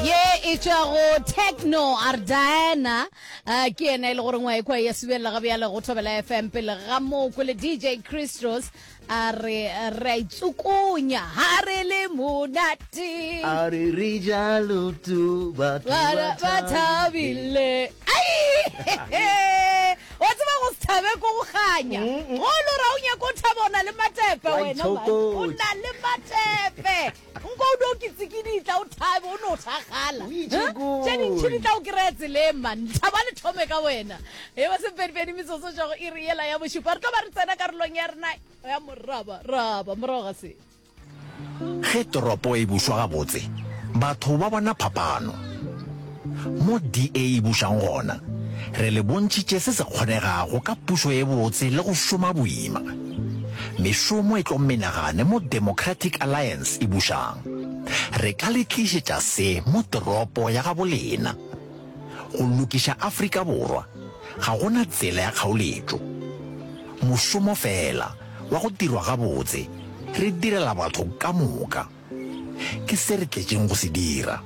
ye e tšwago techno a re diana uh, ke yena e le gore ngwa ekwa ya subelela ga bjale go thobela fm pele ga moo kwele dj christos a re re a itsukunya ga re le monate a re re jalo tu batho Bara ba ba thabile wa tseba go se thabe ko go ganya go lo ra o nyako o thaba o na le matepe Wa wena man. o itshokotša. na le matepe Nko o do kitsikidi tla o thabe o no thagala. Tše dintšhi di tla o kry-a tseleng man. Lethabo a le thome ka wena. E ba sepedipedi metsotso tša go iri yela ya bošupa. Re tlo ba re tsena karolong ya rena ya moraba raba morago ga se. Ge toropo e bušwa gabotse, batho ba bona phapano. Mo DA e bušago gona, re le bontšhitše se se kgonegago ka pušo e botse le go šoma boima. Mešomo e tlo menagane mo Democratic Alliance e bušago. Re ka le tlišetša se mo toropo ya gabo lena. Go lokiša Afrika Borwa ga go na tsela ya kgaoletšo. Mošomo feela wa go dirwa gabotse re direla batho ka moka. Ke se re tletšeng go se dira.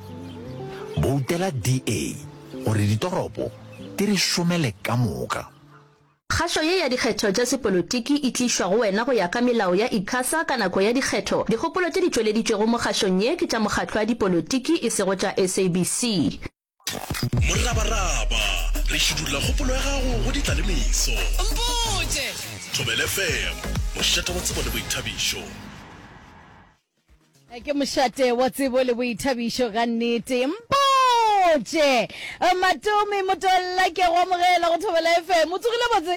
Boutela DA gore ditoropo di re šomele ka moka. Kgašo ye ya dikgetho tša sepolotiki e tlišwa go wena go ya ka melao ya Icasa ka nako ya dikgetho. Dikgopolo tše di tšweleditšwego mo kgašong ye ke tša mokgatlo wa dipolotiki e sego tša SABC. Morabaraba, re šidulla kgopolo ya gago go ditlalemeso. Mpotše! Thobela FM, mošate wa tsebo le boithabišo. Ke mošate wa tsebo le boithabišo ga nnete. Mpotše! Matomi Motolla, ke a go amogela go Thobela FM. O tsogile botse?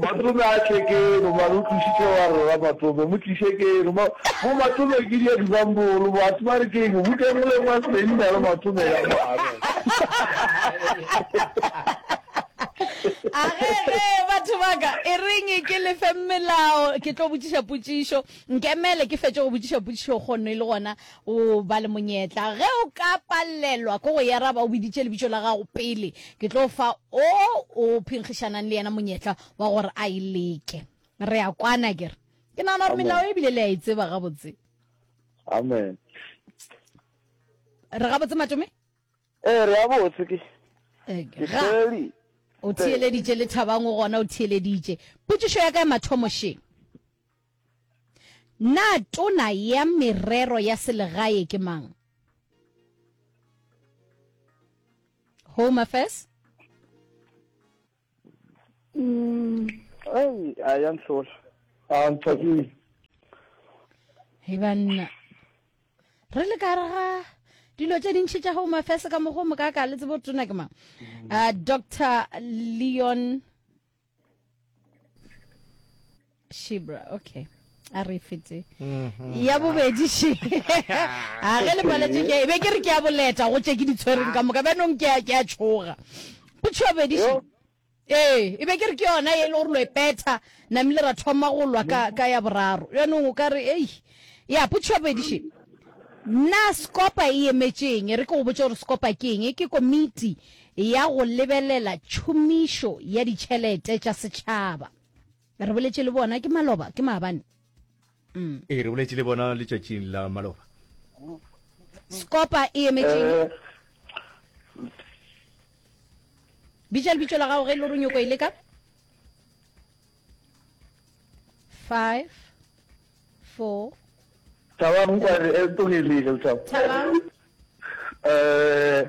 Matome a tle keno mane o tlisitse wa rera matome mo tlise keno mo matome ke dia dibambolo batho ba re keng go tengole mwa senna le matome ya mare agege batho baka e reng ke lefe melao ke tlo botšiša potšišo nkemele ke fetše go botšiša potšišo kgonno e le gona O ba le monyetla. Ge o ka palelwa ke go e araba, o biditše lebitšo la gago pele. Ke tlo fa o o phenkgišanang le yena monyetla wa gore a e leke. Re a kwana, ke re? Ke nagana gore Amen. melao e bile le a e tseba gabotse. Amen. Re gabotse, Matome? Ee, re a botse ke. Eh, Ke ga. theli. O theeleditše le thabang o gona o theeleditše. Potšišo ya ka ya mathomo šeng? Na tona ya merero ya selegae ke mang? Home Affairs? Mm, hey, a ya nhlola. A ntshwakile. Hey banna. Re le ka rega dilo tše dintšhi tša Home Affairs ka mogo mo ka ka le tsebo tona ke mang. Uh, Dr. Leon shibra okay a re fete mm-hmm. ya bobedi she a ge le paletse ke be ke re ke a boleta go tše ke di tshwereng ka moka bjanong ke ke a tshoga potso ya bobedi she ee e be ke re ke yona e le gore lo e petha namile ra thoma go lwa ka ka ya boraro bjanong o ka re ei ya potso ya bobedi she na skopa e emetšeng e re ke go botse gore skopa ke eng ke komiti ya go lebelela tšhomišo ya ditšhelete tša setšhaba. Re boletše le bona ke maloba, ke maabane. Mm. Ee, re boletše le bona letšatšing la maloba. Skopa e emetšeng? Eh. Bitša lebitšo la gago ge e le gore o nyoko e leka. Five, four. Thabang kwa re e tlogelile le thabang. Thabang. Eh.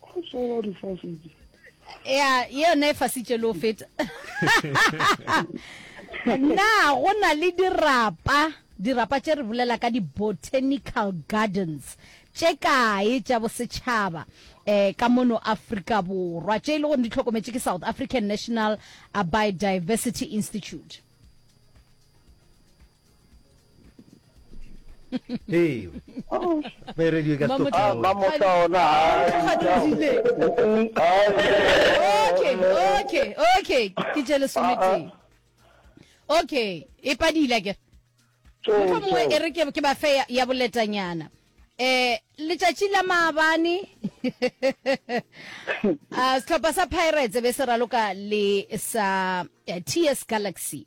go tsola difasitse ya yone e fasitše le o feta na go na le dirapa dirapa tše re bolela ka di-botanical gardens tše kae tša bosetšhaba eh ka mono afrika borwa tše e le gore di tlhokometše ke south african national biodiversity institute Hey. Oh. May radio ka stop. Ah, mamo ka ona. Okay, okay, okay. Ke jele sometse. Okay, e padile ke. Motho mongwe e re ke ba fe ya boletanyana. Eh, letsatsi la maabane a ah, setlhopha sa pirates be se raloka le sa eh, ts galaxy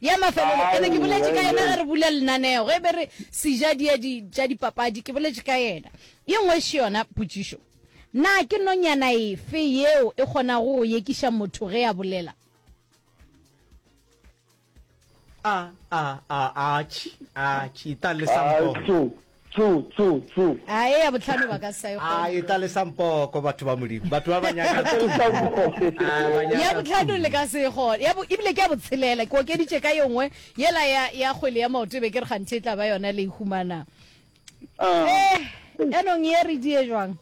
Ya mafelelo, ke ne ke boletše ka yena ge re bula lenaneo, ge be re seja dia di, tša dipapadi, ke boletše ka yena. Ye nngwe še yona potšišo, Na ke nonyana efe yeo e kgonago go yekiša motho ge a bolela? A, a, a, atšhi, atšhi, ta lesa mpogo. Tsu, tsu, tsu. A eya bohlano ba ka sa e kgone. A etla le sa mpoko, batho ba Modimo. Batho ba ba nyakang tsu, tsu. Ya bohlano le ka se e kgone. Ya bo, ebile ke ya botshelela. Ke okeditše ka ye nngwe. Yela ya, ya kgwele ya maoto e be ke re kganthe e tla ba yona le e humana. Eh, yanong ye re die jwang?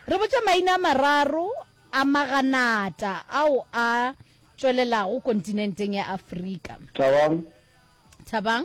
Re botša maina a mararo a maganata ao a tšwelelago kontinenteng ya Afrika. Thabang. Thabang.